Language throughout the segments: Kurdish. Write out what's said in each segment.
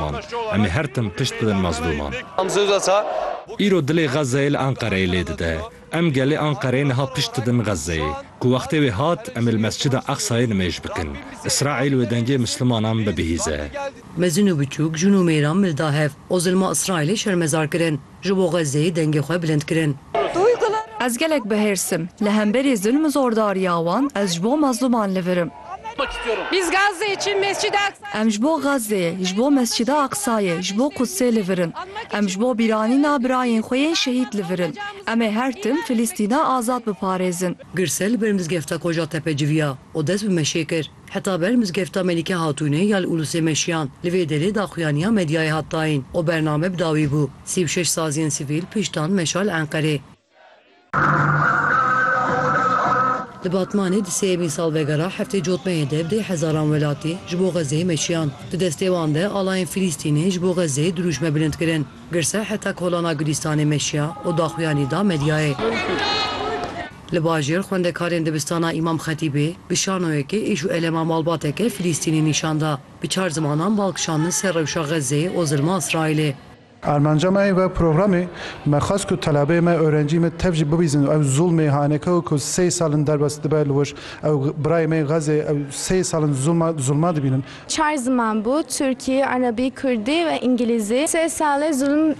Kurdan. Em ê her tim pişt bidin mezlûman. Îro dilê Xezzeyê li Enqereyê lê dide. Em gelê Enqereyê niha pişt didin Xezzeyê. Ku wextê wê hat em ê li Mescida Eqsayê nimêj bikin. Îsraîl wê dengê misilmanan bibihîze. Mezin û biçûk, jûn û mêran milda hev. O zilma Îsraîlê şermezar kirin. Ji bo Xezzeyê dengê xwe bilind kirin. Ez gelek bi hêrs im. Li hemberî zulm û zordariya wan ez ji bo mezlûman li vir im. Em ji bo Xezzeyê, ji bo Mescida Aqsayê, ji bo Qudsê li vir in. Em ji bo bîranîna birayên xwe yên şehîd li vir in. Em ê her tim Filîstîna azad biparêzin. Girsel li ber mizgefta Kocatepe civiya û dest bi meşê kir. Heta ber mizgefta Melîke Hatûnê ya li Ulusê meşiyan, li vê derê daxuyaniya medyayê hat dayîn û bername bi dawî bû. Sî û şeş saziyên sivîl piştan meşa li Enqerê. Li Batmanê di sêyemîn salvegera heftê cotmeyê de dê hezaran welatî ji bo Xezzeyê meşiyan. Di destê wan de alayên Filîstînê ji bo Xezzeyê dirûşme bilind kirin. Girse heta kolana Gulîstanê meşiya û daxuyanî da medyayê. Li bajêr xwendekarên dibistana Îmam Xetîbê bi şanoyekê êş û elema malbateke Filîstînî nîşan da. Bi çar zimanan bal kişandin ser rewşa Xezzeyê û zilma Îsraîlê. Armanca me wek programê, me xwest ku telebeyê me, orencî me tev jî bibîzin û ew zulmê hanekewê ku sey sal in derbas dibe li wir, ew birayê me yê Xezzeyê, ew sey sal in zulma zulma dibînin. Çar ziman bû, Tirkî, Erebî, Kurdî ve Îngilîzî. Sê sale zulm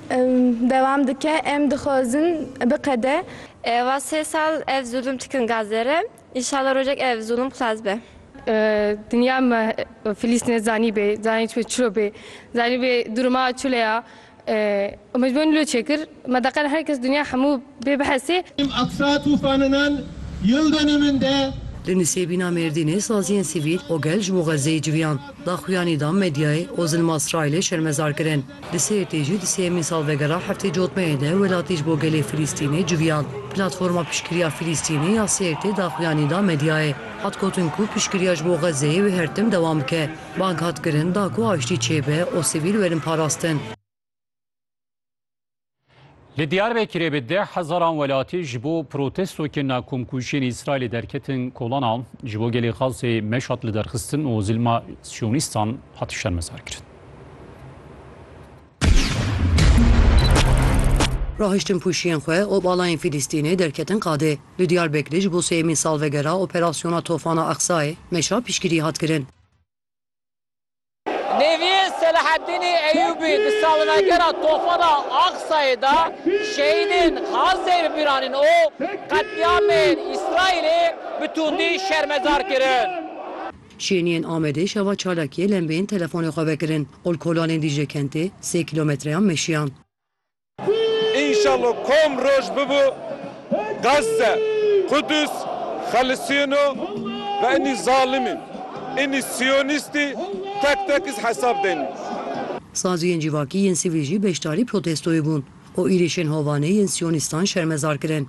dewam dike, em dixwazin biqede. Eva sê sal ev zulm tikin gazere, înşala rojek ev zulm xilas be. Dinya me Filîstîne zanîbê, zanîbê çilo bê, zanîbê durma çile ya. Umêd Bûn Lûçê kir, Me deqal her kes dinya hemû bê bihesê. Im Aqsa tûfaninan yil de ne min de. Li Nisêbîna Mêrdînê saziyên sivîl û gel ji bo Xezzeyê civiyand. Daxuyanî da medyayê û zilma Îsraîlê şermezar kirin. Li Sêrtê jî di sêyemîn salvegera heftê cotmeyê de welatî ji bo gelê Filîstînê civiyand. Platforma Piştgiriya Filîstînê ya Sêrtê daxuyanî da medyayê. Hat gotin ku piştgiriya ji bo Xezzeyê wê her tim dewam bike. Bang hat kirin da ku aştî çêbe û sivîl werin parastin. Li Diyarbekirê bi deh hezaran welatî ji bo protesto kirina komkujiyên Îsraîlê derketin kolana. Ji bo gelê Xazzê meş hat lidarxistin û zilma siyonîstan hat şermezarkirin. Rahiştin pûşiyên xwe û balayên Fîlîstînê derketin qadê. Li Diyarbekirê ji bo sêyemîn salvegera operasyona Tofana Aqsayê meşa piştgirî hat kirin. Neviyê Selahaddînî Eyûbî di salvegera Tofana Aqsayê de şehîdên Xazzeyê bi bîr anîn û qetlîamên Îsraîlê bi tundî şermezar kirin. Şêniyên Amedê şeva çalakiyê lembeyên telefonê xwe vekirin, qulkolanên Dîcle Kentê sê kîlommetreyan meşiyan. Înşallah kom roj bibo Gazze, Qudus xelisiyeno ve inî zalimî, inî siyonîstî tek tek iz hesab denî. Saziyên civakî yên sivîl jî beşdarî protestoyê bûn û êrişên hovane yên siyonîstan şermezar kirin.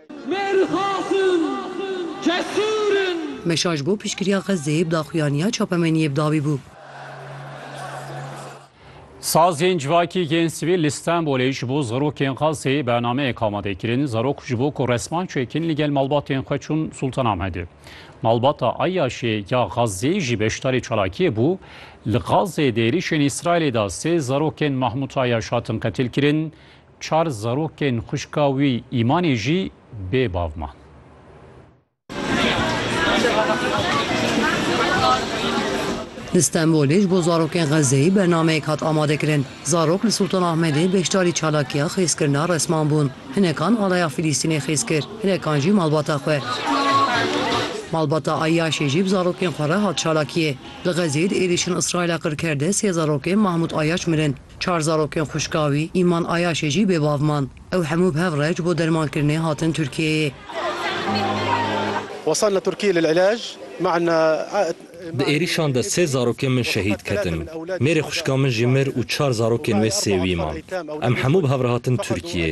Mêr xasin cesur in. Meşa ji bo piştgiriya Xezzeyê bi daxuyaniya çapemeniyê bi dawî bû. Sazên civakî yên sivîl li Stenbolê ji bo zarokên Xezzeyê bernameyek amade kirin. Zarok ji bo ku resman çêkin li gel malbatên xwe çûn Sultanamedê. Malbata Eyyaşê ya Xezzeyê jî beşdarî çalakiyê bû. Li Xezzeyê di êrîşên Îsraîlê de sê zarokên Mahmut Eyyaş hatin qetilkirin. Çar zarokên xwişka wî Îmanê jî bê bav man. Li Stenbolê ji bo zarokên Xezzeyê bernameyek hat amadekirin. Zarok li Sultanahmedê beşdarî çalakiya xêzkirina resman bûn. Hinekan alaya Filîstînê xêz kir, hinekan jî malbata xwe. Malbata Ayyaşê jî bi zarokên xwe re hat çalakiyê. Li Xezzeyê di êrîşên Îsraîla qirker de sê zarokên Mahmûd Ayyaş mirin. Çar zarokên xwişka wî Îman Ayaşê jî bê bav man. Ew hemû bi hev re ji bo dermankirinê hatin Tirkiyeyê. Wesalna Tirkiyê lil'ilaj ma'a. Di êrîşan de sê zarokên min şehîd ketin. Mêrê xwişka min jî mir û çar zarokên wê sêwî man. Em hemû bi hev re hatin Tirkiyeyê.